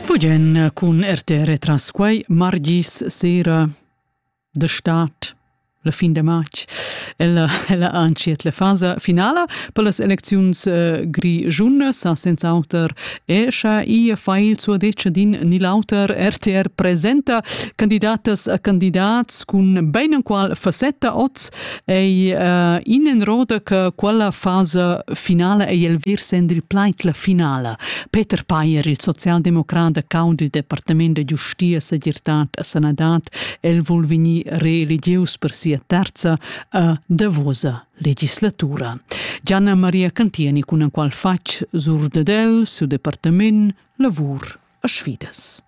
Bugen cun RTR tras quei margis sera de stad la fin de matg ella, ella antschiet la fasa finala per las elecziuns eh, grigiun sa senz'auter e scha i fa il suo deccia din ni l'auter RTR presenta candidatas a candidats cun beinenqual facetta oz ei uh, in en roda che quella fasa finala ei el vir send il plait la finala. Peter Payer, il socialdemocrat da cau du Departement de Giustia, Segirtad a Sanadad, el vul veni reeligieus per sia terza a davosa legislatura. Gianna Maria Cantieni cun en qual fatg sur dedel, su departament, lavur a sfidas.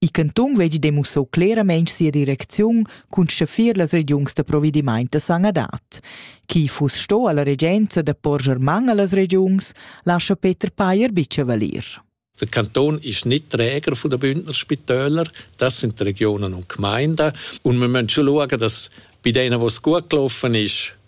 Il cantun vegli demussau clairamein sia direcziun cun schaffir las regiuns da provedimaint da sanadad. Chi fuss sto alla regenza da porscher man allas regiuns, lascha Peter Payer bicha valir. Der Kanton ist nicht Träger von den Bündner Spitälern, das sind die Regionen und Gemeinden. Und wir müssen schon schauen, dass bei denen, wo es gut gelaufen ist,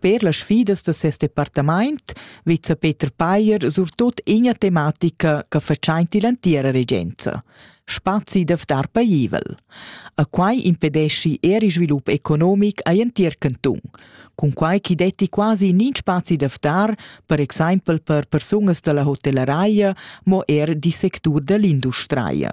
Sper las sfidas da ses departamaint vezza Peter Payer surtot ina tematica che fatschaint ill'antiera regenza spazi da ftar paivel. A quai impedeschi er il svilup economic a l'entir cantun, cun quai chi detti quasi nin spazi da ftar, per exaimpel per persunas da la hotelleraia, mo er di sectur da l'industria.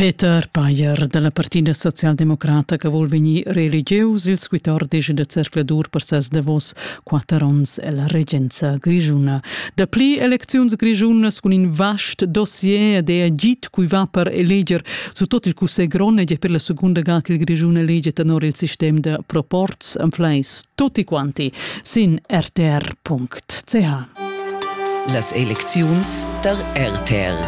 Peter Payer dalla Partina socialdemocrata che vul vegnir reelegieus il squittor disch da zercladur per ses davos quatter onns ella regenza grischuna. Dapli elecziuns grischunas cun in vast dossier ed è agit cui va per eleger su tot il cussegl grond ed è per la secunda ga che il Grischun elege tenor il sistem da proporz en fleis tutti quanti sin rtr.ch. tga. Las elecziuns tar RTR.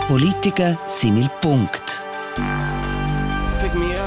Politica sin il punct. Pick me up.